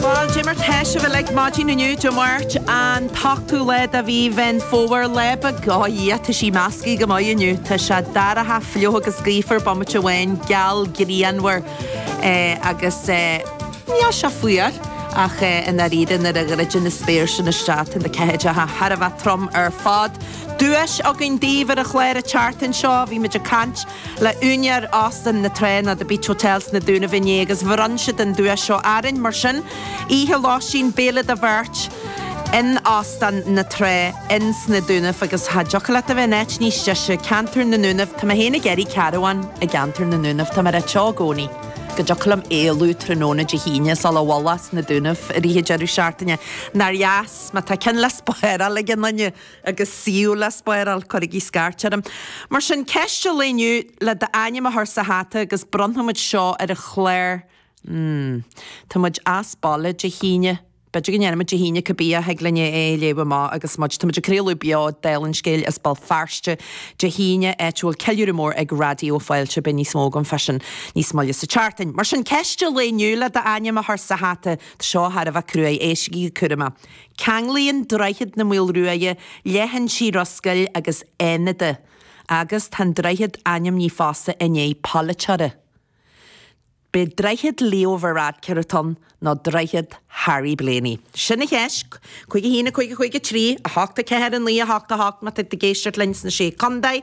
Bhuel, Dé Máirt atá againn ar maidin inniu, Dé Máirt, an t-ochtú lá de mhí Mheán Fómhair, lá breá, á, Dhia, tá sí measctha go maith inniu, tá sé dorcha, fliuch agus gaofar bomaite amháin, geal, grianmhar, eh, agus eh, níl sé fuar, ach eh, i ndáiríre nuair a dhruideann an spéir sin isteach, tá na ceathaideacha thar a bheith trom ar fad. Duais againn daoibh ar an chlár ag teacht anseo, bhí muid ag caint. le úinéir Óstán na Trá nó The Beach Hotel sna Dúnaibh inné agus bhronn siad an duais seo orainn mar sin, oíche lóistín, béile do bheirt in Óstán na Trá in sna Dúnaibh agus cha dtiocfadh leat a bheith in áit níos deise, ceantar na nDúnaibh, tá mé féin ag iarraidh carabhán i gceantar na nDúnaibh, tá mé ag ráit i gcónaí go dtiocfadh liom éalú tráthnóna Dé hAoine suas go bhfuil muid sna Dúnaibh fá choinne deireadh seachtaine, nár dheas má tá ceann le spáráil ag aon duine! agus é le spáráil, cuirigí scairt orm. Mar sin, ceist an lae inniu le d'ainm a chur sa hata agus bronnfaimid seo ar an chlár mm. tá muid as baile Dé hAoine, b'fhéidir go ndéanfaimid Dé hAoine cibé ach thig linn é a léamh amach agus muid. Táimid ag craoladh beo de Bharrscéalta as Béal Feirste Dé hAoine, áit a bhfuil ceiliúradh mór ag Raidió Fáilte. Beidh níos mó agam faoi sin níos moille sa tseachtain. Mar sin, ceist an lae inniu le d'ainm a chur sa hata, tá seo thar a bheith cruaidh, éistigí go cúramach! Ceanglaíonn Droichead na Maoile Ruaidhe leithinsí Ros Goill agus Fhánada agus tá an droichead ainmnithe fosta i ndiaidh polaiteora. Ab é Droichead Leo Varadkar atá ann nó Droichead Harry Blaney. Sin an cheist! Cúig a haon, a cúig, a cúig a trí, a hocht a ceathair, a naoi a hocht a hocht má tá tú ag éisteacht linn sna Sé Chontae.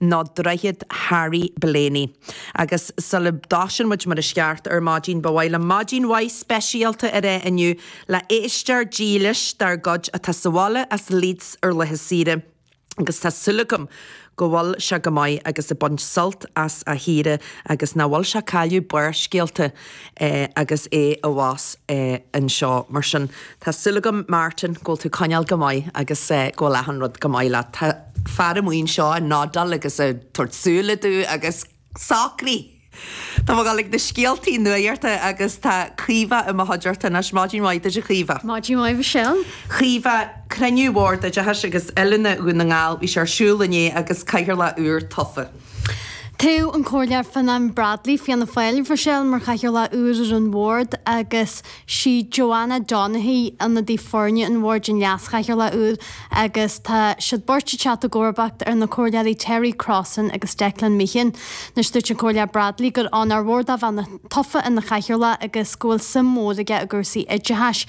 nó droichead Harry Blaney. Agus sula dtosaíonn muid mar is ceart ar maidin, ba mhaith liom maidin mhaith speisialta a rá inniu le héisteoir dílis dár gcuid atá sa bhaile as Leeds ar laetha saoire agus tá súil agam go bhfuil sé go maith agus ag baint sult as a shaoire agus nach bhfuil sé ag cailleadh Barrscéalta agus é abhus anseo. Mar sin, tá súil agam, Martin, go bhfuil tú ag coinneáil go maith agus go bhfuil achan rud go maith leat. Fear atá amuigh anseo i nDáil agus ag tabhairt súile do agus socraigh! Tá muid ag gabháil chuig na scéaltaí nuachta agus tá Caoimhe i mo chuideachta anois. Maidin mhaith duit, a Chaoimhe. Maidin mhaith Mhichelle. Caoimhe, cruinniú Bhord Oideachais agus Oiliúna Dhún na nGall bhí sé ar siúl inné agus Cathaoirleach úr tofa. Toghadh an Comhairleoir Fionán Bradley, Fianna Fáil, Mhichelle, mar Chathaoirleach úr ar an bhord agus Is í Joanna Donaghy ionadaí foirne an Bhoird an Leas-Chathaoirleach úr agus tá siad beirt ag teacht i gcomharbacht ar na Comhairleoirí Terry Crossan agus Declan Meehan. Anois dúirt an Comhairleoir Bradley gur onóir mhór dó a bheith tofa ina Chathaoirleach agus go bhfuil suim mhór aige i gcúrsaí oideachais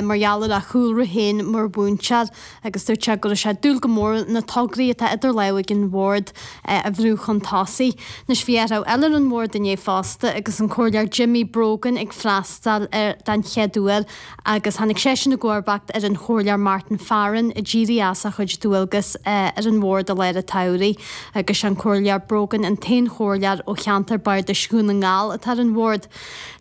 mar gheall ar a chúlra féin mar mhúinteoir. agus dúirt sé go raibh sé ag dúil go mór na tograí atá idir lámha ag an bhord a bhrú chun tosaigh. Anois bhí athrú eile ar an mbord inné fosta agus an Comhairleoir Jimmy Brogan ag freastáil air don chéad uair agus tháinig seisean i gcomharbacht ar an Chomhairleoir Martin Farren a d'éirigh as a chuid dualgas ar an bhord i lár an tsamhraidh agus sé an Comhairleoir Brogan an t-aon chomhairleoir ó cheantar Bardais Dhún na nGall atá ar an bhord.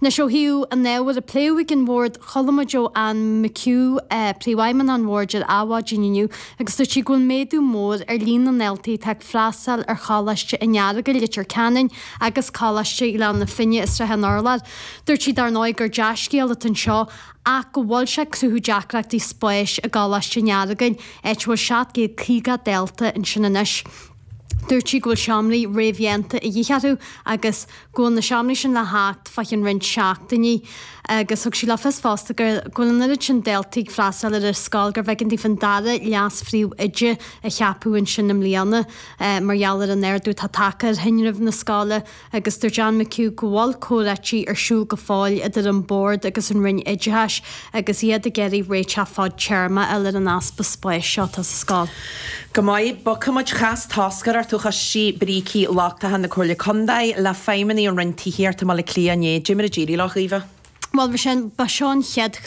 Anois ó thaobh an ábhair a pléadh ag an bhord, chuala muid ó Anne McHugh, Príomhfheidhmeannach an Bhoird ar Adhmhaidin inniu agus dúirt sí go bhfuil méadú mór ar líon na ndaltaí atá ag freastáil ar Choláiste an Earagail, Leitir Ceanainn agus Coláiste Ghleann na Finne i Srath an Urláir. Dúirt sí dar ndóigh gur dea-scéal atá anseo ach go bhfuil sé ag cruthú deacrachtaí spáis i gColáiste an Earagail, áit a bhfuil 750 dalta ansin anois. Dúirt sí go bhfuil seomraí réamhdhéanta a dhíth orthu agus go bhfuil na seomraí sin le theacht faoi cheann roinnt seachtainí agus thug sí le fios fosta go bhfuil an oiread sin daltaí ag freastal ar an scoil gurbh éigean daofa an dara leas-phríomhoide a cheapadh ansin i mbliana mar gheall ar an ardú atá tagtha ar thinreamh na scoile. agus dúirt Anne McHugh go bhfuil comhráití ar siúl go fóill idir an Bord agus an Roinn Oideachais agus iad ag iarraidh réiteach fadtéarma a fháil ar an easpa spáis seo atá sa scoil. Go maith, bogfaidh muid chas toscaireacht ó choiste brící lochtacha na Comhairle Contae le feidhmeannaigh an Roinn Tithíochta i mBaile Átha Cliath inné. Caidé mar a d'éirigh leo, Caoimhe. Bhuel, bhí sé, ba seo an chéad.